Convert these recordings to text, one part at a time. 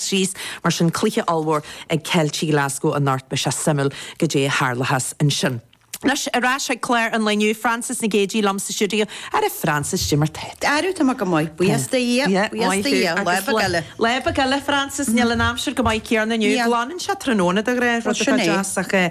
thíos. Mar sin, cluiche ollmhór ag Ceiltigh Ghlaschú anocht. Beidh sé suimiúil goidé a tharlóchas ansin. Anois ar ais chuig clár an lae inniu. Frances Nic Géadaigh liom sa stiúideo. Ara Frances, goidé mar atá tú. Ara tá mé go maith, buíochas do Dhia, Yeah, buíochas maith do thú. Dhia. Lá Agus beag eile. lá beag eile, Frances, níl an aimsir chomh maith céarna inniu. Yeah. Glanann sé tráthnóna de ghnáth, rud Sin atá é. deas ach eh.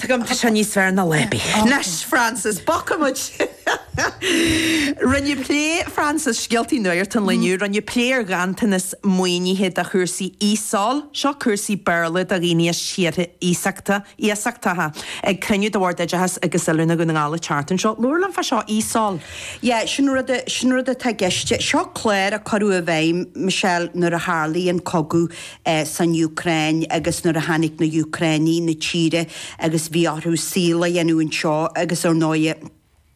Tuigim, tá sé níos fearr ná Leppy. Anois, Frances, bogfaidh muid. Rinneadh plé, Frances, scéaltaí nuacht an lae inniu, rinneadh plé ar ghanntanas maoinithe do chúrsaí ESOL, seo cúrsaí Béarla do dhaoine as tíortha iasachta, iasachtacha, ag cruinniú de Bhord Oideachais agus Oiliúna Dhún na nGall an tseachtain seo. Labhair liom fá seo ESOL. Yeah, sin rud, sin rud atá i gceist. Seo clár a cuireadh i bhfeidhm, Michelle, nuair a tharlaigh an cogadh san Úcráin agus nuair a tháinig na hÚcránaigh 'na tíre agus bhí orthu saol a dhéanamh anseo agus ar ndóigh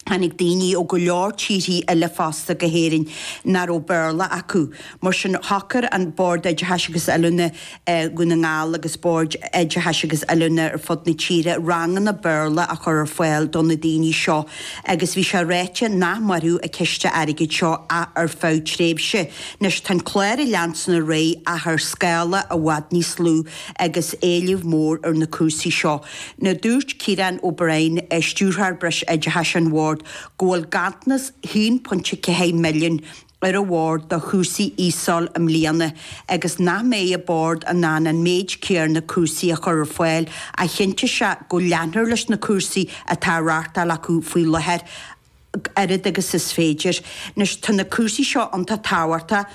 tháinig daoine ó go leor tíorthaí eile fosta go hÉirinn nach raibh Béarla acu. Mar sin shocair an Bord Oideachais agus Oiliúna Dhún na nGall agus boird oideachais agus oiliúna ar fud na tíre ranganna Béarla a chur ar fáil do na daoine seo agus bhí sé ráite nach mairfeadh an ciste airgid seo ach ar feadh tréimhse. Anois, tá an clár ag leanstan ar aghaidh ach ar scála i bhfad níos lú agus éileamh mór ar na cúrsaí seo. Now dúirt Ciarán O'Brien, Stiúrthóir Breis Oideachais an Bhoird, go bhfuil ganntanas 1.4 milliúin ar an Bhord do chúrsaí ESOL i mbliana agus nach mbeidh an Bord in ann an méid céarna cúrsaí a chur ar fáil ach chinntigh sé go leanfar leis na cúrsaí atá á reáchtáil acu faoi láthair. oiread agus is féidir. Anois, tá na cúrsaí seo iontach tábhachtach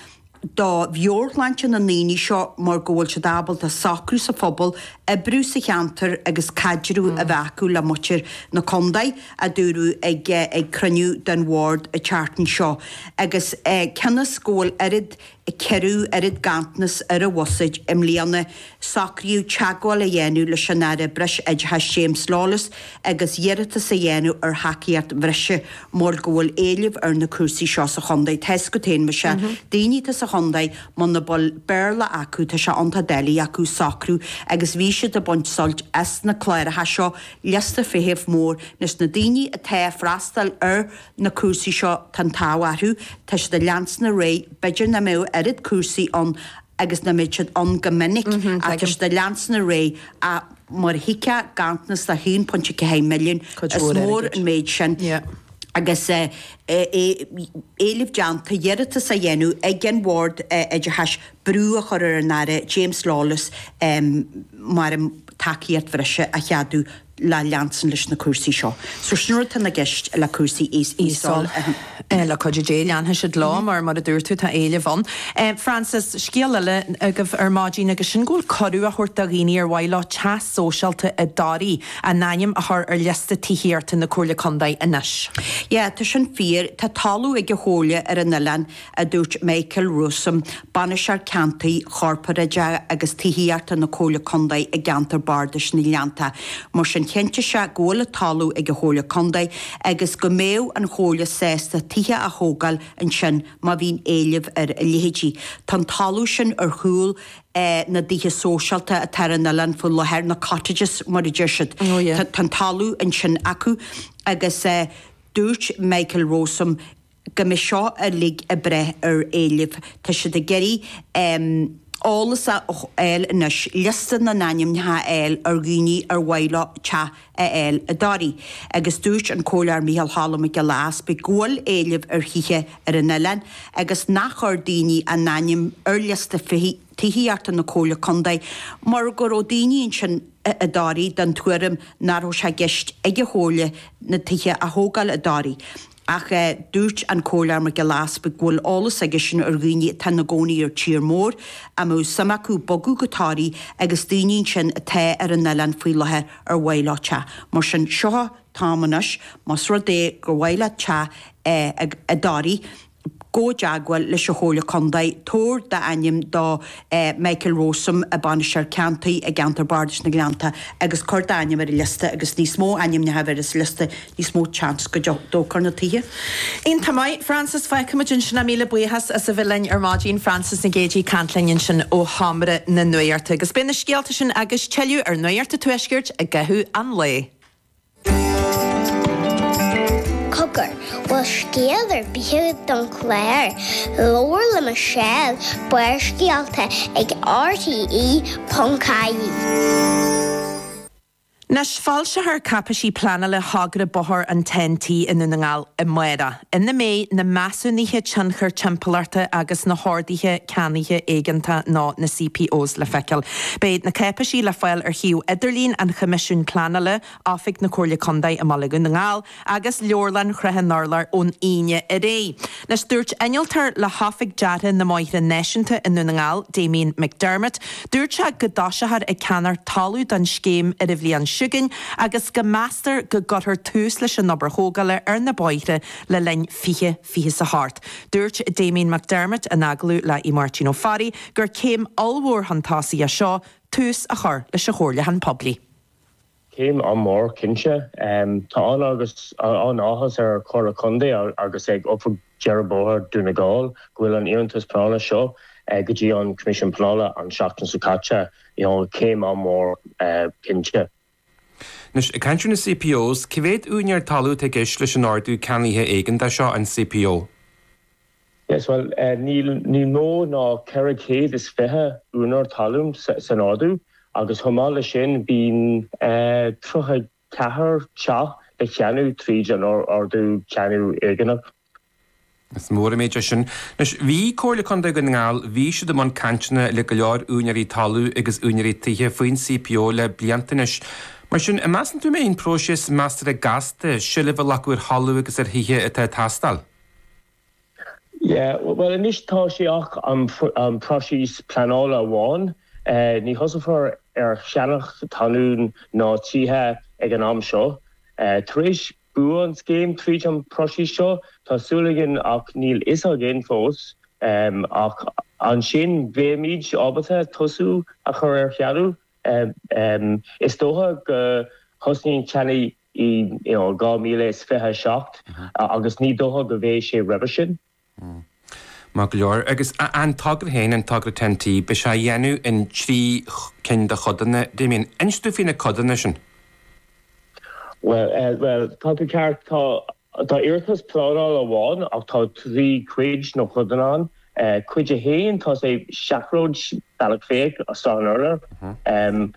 do mheabhairshláinte na ndaoine seo mar go bhfuil siad ábalta socrú sa phobal, oibriú sa cheantar agus caidreamh a bheith acu le muintir na contae, a dúradh ag cruinniú den bhord an tseachtain seo. Agus cionn is go bhfuil oiread ceithre oiread ganntanas ar an bhuiséad i mbliana, socraíodh teagmháil a dhéanamh leis an Aire Breis Oideachais James Lawless agus iarratas a dhéanamh ar thacaíocht bhreise, mar go bhfuil éileamh ar na cúrsaí seo sa chontae. Tá a fhios agat féin, Michelle. Daoine atá sa chontae, muna bhfuil Béarla acu, tá sé iontach doiligh acu socrú agus bhí siad ag baint suilt as na cláracha seo, liosta feithimh mór, leis na daoine atá ag freastal ar na cúrsaí seo tá an t-ádh orthu, tá siad ag leanstan ar aghaidh, b'fhéidir nach mbeadh oiread cúrsaí ann agus nach mbeidh siad ann chomh minic, ach tá siad ag leanstan ar aghaidh, ach mar a thuigfeá, ganntanas de 1.4 milliúin, is mór an méid sin, agus éileamh déanta iarratas á dhéanamh ag an Bhord Oideachais brú a chur ar an Aire James Lawless mar an tacaíocht bhreise a cheadú. le leanstan leis na cúrsaí seo. So sin rud atá i gceist le cúrsaí ESOL, le cuidiú Dé, leanfaidh siad leo mar, mar a dúirt tú, tá éileamh ann. Frances, scéal eile agaibh ar maidin agus sin go bhfuil cuireadh á thabhairt do dhaoine ar mhaith leo teach sóisialta i dToraigh a n-ainm a chur ar liosta tithíochta na Comhairle Contae anois. Yeah, tá sin fíor. Tá talamh ag an Chomhairle ar an oileán a dúirt Michael Rowsome, Bainisteoir Ceantair, Corparáideach agus Tithíochta na Comhairle Contae i gCeantar Bardais na nGleannta. Mar sin, chinntigh sé go bhfuil talamh ag an Chomhairle Contae agus go mbeadh an Chomhairle sásta tithe a thógáil ansin má bhíonn éileamh ar a leithéidí. Tá an talamh sin ar chúl na dtithe sóisialta atá ar an oileán faoi láthair, na cottages mar a deir siad. Tá an talamh ansin acu agus dúirt Michael Rowsome, go mbeidh seo uilig ag brath ar éileamh. Tá siad ag iarraidh eolas a fháil anois, liosta na n-ainmneacha a fháil ar dhaoine ar mhaith leo teach a fháil i dToraigh. Agus dúirt an Comhairleoir Micheál Choilm Mac Giolla Easpaig go bhfuil éileamh ar thithe ar an oileán agus nár chuir daoine a n-ainm ar liosta tithíochta na Comhairle Contae mar go raibh daoine ansin i dToraigh den tuairim nach raibh sé i gceist ag an Chomhairle ná tithe a thógáil i dToraigh. Ach dúirt an Comhairleoir Mac Giolla Easpaig go bhfuil eolas aigesean ar dhaoine atá ina gcónaí ar tír mór a mbeadh suim acu bogadh go Toraigh agus daoine ansin atá ar an oileán faoi láthair ar mhaith leo teach. Mar sin, seo an t-am anois, más rud é gur mhaith leat teach i dToraigh, gabh i dteagmháil leis an Chomhairle Contae, tabhair d'ainm do Michael Rowsome, Bainisteoir Ceantair i gCeantar Bardais na nGleannta agus cuir d'ainm ar an liosta agus níos mó ainmneacha a bheidh ar an liosta níos mó chance go dtógfar na tithe. Iontach maith, Frances, feicfimid ansin é. Míle buíochas as a bheith linn ar maidin, Frances Nic Géadaigh ag caint linn ansin ó Sheomra na Nuachta agus beidh na scéalta sin agus tuilleadh ar Nuacht an Tuaiscirt i gcaitheamh an lae. Cogar, bhfuil scéal ar bith agat don chlár? Labhair le Michelle, Barrscéalta ag RTÉ.ie. Anois, foilseofar cáipéisí pleanála thogra bóthair an TEN-T i nDún na nGall amárach. ina mbeidh na measúnuithe tionchair timpeallachta agus na horduithe ceannaithe éigeantach nó na CPOs le feiceáil. Beidh na cáipéisí le fáil ar shuíomh idirlín an Choimisiúin Pleanála, Oifig na Comhairle Contae i mbaile Dhún na nGall agus Leabharlann Shrath an Urláir ón Aoine ar aghaidh. Dúirt innealtóir le hOifig Deartha na mBóithre Náisiúnta i nDún na nGall, Damien McDermott, Dúirt sé go dtosófar ag ceannacht talamh don scéim ar an bhliain chugainn agus go meastar go gcuirfear tús leis an obair thógála ar na bóithre le linn 2028. Dúirt Damien McDermott in agallamh le hAodh Máirtín Ó Fearraigh gur céim ollmhór chun tosaigh é seo tús a chur leis an chomhairliúchán poiblí. Céim an-mhór, cinnte. Tá an-áthas ar an Chomhairle Contae agus ag Oifig Dhearadh Bóthair Dhún na nGall go bhfuil an iarratas pleanála seo go dtí an Coimisiún Pleanála an tseachtain seo caite. Céim an-mhór, cinnte. Anois, ag caint ar na CPOs, cé mhéad úinéir talún atá i gceist leis an Ordú Ceannaithe Éigeantaigh seo, an CPO? Yes, bhuel, bíonn níos mó ná 420 úinéir talún san ordú, agus chomh maith leis sin, bíonn 34 teach le ceannach tríd an ardú ceannadh éigeanach. Is mór an méid é sin. Anois, bhí Comhairle Contae Dhún na nGall, bhí siad i mbun cainteanna le go leor úinéirí talún agus úinéirí tithe faoin CPO le blianta anois. Mar sin, an measann tú an mbeidh an próiseas measartha gasta, seilbh a ghlacadh ar thalamh agus ar thithe atá ag teastáil? Yeah, bhuel anois tá sé ach an próiseas pleanála amháin. Ní thosaifear ar cheannach talún ná tithe ag an am seo. Tar éis bua an scéim tríd an próiseas seo, tá súil againn, ach níl a fhios againn fós, ach ansin bheimid ábalta tosú a chur ar cheannach. Is dócha go thosnaíonn ceannaigh 2027 agus ní dócha go bheidh sé roimhe sin. Maith go leor. Agus an togra féin, an togra Ten T, beidh sé á dhéanamh in trí cinn de chodanna. Damien, inis dúinn faoi na codanna sin? Bhuel, tá tú ceart. Tá Tá iarratas pleanála amháin, ach tá trí chuid nó chodanna ann. Cuid a haon, tá sé seachród Bealach Féich is Srath an Urláir.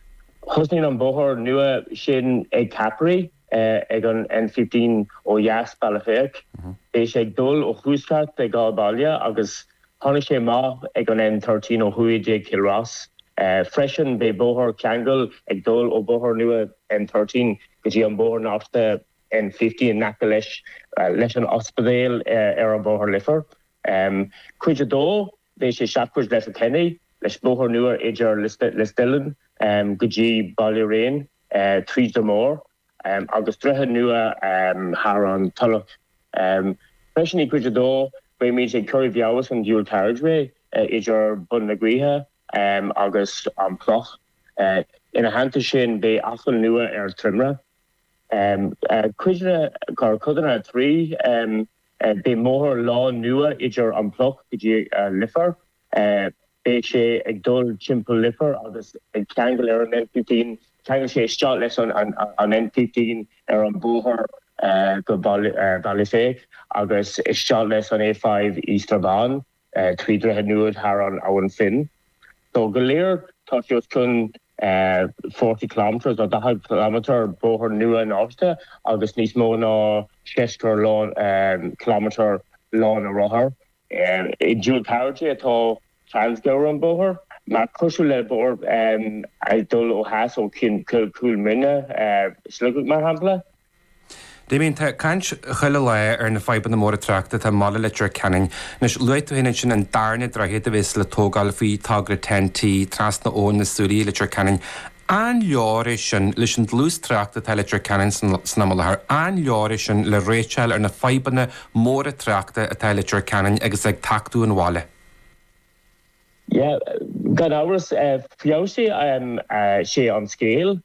Thosnaíonn an bóthar nua sin ag Cappry, ag an N-15 ó dheas Bealach Féich. Beidh sé ag dul ó thuaisceart an dá bhaile, agus tháinig sé amach ag an N-13 ó thuaidh de Chill Rois. Freisin, beidh bóthar ceangail ag dul ó bóthar nua N-13 go dtí an bóthar nasctha. N15 in aice leis leis an ospidéal ar an Bhóthar Leifear. Cuid 2, Beidh sé seachród Letterkenny, leis bóthar nua idir Listellian go dtí Ballyraine tríd Dromore agus droichead nua thar an tSúileach. Freisin i gcuid 2, beimid ag cur i bhfeabhas an dual carriageway idir Bun na Gaoithe agus an Pluc. Ina theannta sin, beidh acomhal nua ar Trimragh. Cuid a, cuid, codanna 3 Beidh bóthar lán nua idir an Pluc go dtí Leifear. Beidh sé ag dul timpeall Leifear agus ag ceangal ar an N15. Ceangal sé isteach leis an N15 ar an bóthar go Bealach Féich agus isteach leis an A5 i Strabane. trí dhroichead nua thar an Abhainn Finn. So, go léir, tá sé os cionn forty kilometres, nó daichead ciliméadar, bóthar nua nó feabhsaithe agus níos mó ná seasca ciliméadar lána rothar. I dual carriage atá ann i gcomhair an bóthar, mar cosúil le bóthar ag dul ó theas ó Chúil Mhuine, Sligeach, mar shampla. Damien, tá caint chuile lá ar na fadhbanna móra tráchta atá i mbaile Leitir Ceanainn. Anois, luaigh tú féin ansin an darna droichead a bheas le tógáil faoi togra Ten T, trasna Abhainn na Súilí i Leitir Ceanainn. An leor é sin leis an dlús tráchta atá i Leitir Ceanainn san am i láthair? An leor é sin le réiteach a fháil ar na fadhbanna móra tráchta atá i Leitir Ceanainn agus ag tachtadh an bhaile? Yeah, gan amhras, feabhsóidh sé an scéal.